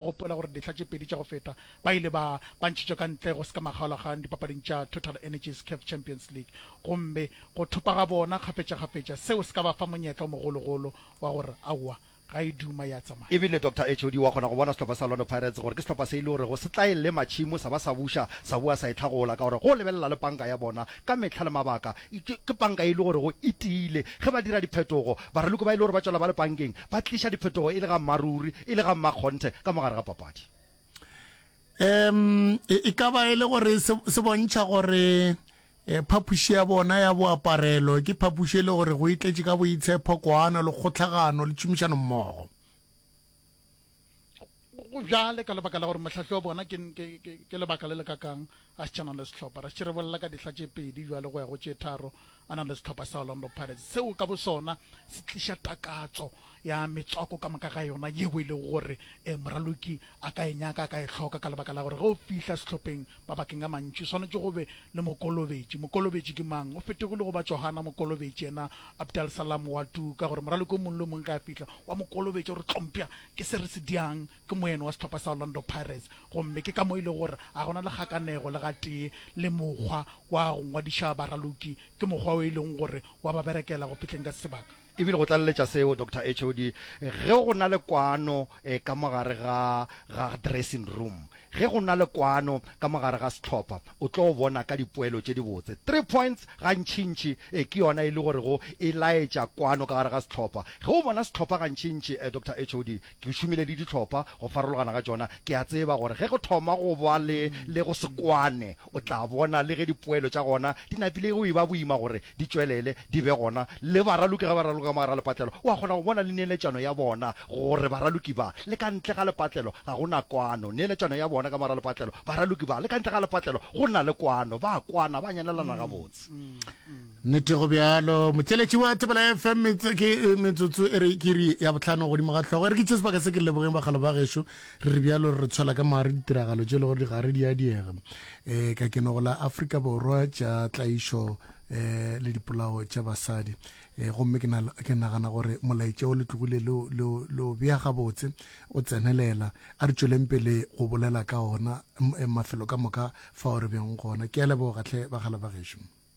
Gopola gore dihla tše pedi tša go feta ba ile ba ba ntšhitšwe ka ntle go se ka makgaolakgang dipapading tša Total Energies Caf Champions League gomme go thopa ga bona kgafetšakgafetša seo se ka ba fa monyetla o mogologolo wa go re aowa ga e duma ya tsamaya. Ebile Doctor HOD wa kgona go bona sehlopha sa Orlando Pirates gore ke sehlopha se e le gorego se tla e lema tšhimo sa ba sa buša sa boa sa e hlagola ka gore go lebelela le panka ya bona ka mehla le mabaka Ke, ke panka ye e le gore go e tiile. Ge ba dira diphetogo, baraloko ba e le gore ba tšwela ba le pankeng, ba tliša diphetogo e le ga mmaruri, e le ga mmakgonthe, ka mo gare ga papadi. Um, e, e ka ba e le gore se, se bontšha gore eh, phapuši ya bona ya boaparelo ke phapuši e le gore go itletše ka boitshepho, koano le kgotlhagano le tšhomišano mmogo. go bjale ka lebaka la gore mohlahli wa bona ke, ke, ke, ke lebaka le le kakang a se tšhanang le sehlopha ra se re bolela ka dihla tše pedi bjale go ya go tše tharo a na le sehlopha sa orlando pirates seo ka bosona se tliša takatso ya metswako ka moka ga yona yeo e lego gore um moraloki a ka e nyaka a ka e hloka ka lebaka la gore ge o fihla sehlopheng Mabakeng a mantši o swanetše go be le mokolobetši. Mokolobetši ke mang? O fetegile go ba Johana Mokolobetši, yena Abdal Salam wa Tu, ka gore moraloki o mongwe le o mongwe ge a fihla o a mo kolobetša, o re, Tlompša, ke se re se diang, ke moyeno wa sehlopha sa Orlando Pirates. Gomme ke ka mo e lego gore ga go na le kgakanego le gatee le mokgwa wa go ngwadiša baraloki. Ke mokgwa o e lego gore o a ba berekela go fihleng ka sebaka. E bile go tlaleletša seo, Doctor HOD, ge go na le kwano ka mo gare ga, ga dressing room, ge go na le kwano ka mo gare ga sehlopha, o tlo bona ka dipoelo tše dibotse. Three points gantšintši ke yona e le gorego e laetša kwano ka gare ga sehlopha. Ge o bona sehlopha gantšintši, Doctor HOD, Ke šomile le dihlopha go farologana ga tšona. Ke a tseba gore ge go thoma go ba le le go se kwane, o tla bona le ge dipoelo tša gona di napile go e-ba boima gore di tšwelele di be gona. Le baraloki ge ba raloka ka mogare ga lepatlelo, o a kgona go bona le neeletšano ya bona gore baraloki ba le ka ntle ga lepatlelo ga go na kwano. Neeletšano ya bona ka mogare ga lepatlelo, baraloki ba le ka ntle ga lepatlelo go na le kwano, ba a kwana, ba nyanelana gabotse. Nnete go bjalo. Motšeletši wa Thobela FM ke metsotso e re ke iri ya bohlano godimo ga hlogo. E re ke tše sebaka se ke lebogeng bagalo ba gešo. Re re bjalo re re tshwela ka maare ditiragalo tše e le gore di gare di a diega um ka kenogo la Afrika Borwa tša tlaišo um le dipolao tša basadi um gomme ke nagana gore molaetša o letlogile leo bea gabotse o tsenelela a re tšweleng pele go bolela ka ona mafelo ka moka fa o re beng gona ke a lebogatlhe bagalo ba gešo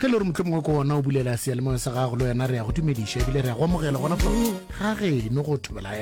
ge le gore mohlomongwe ko gona o bulela seyalemoya sa gago le wena re ya go dumediša ebile re ya go amogela gona fa ga geno go thobela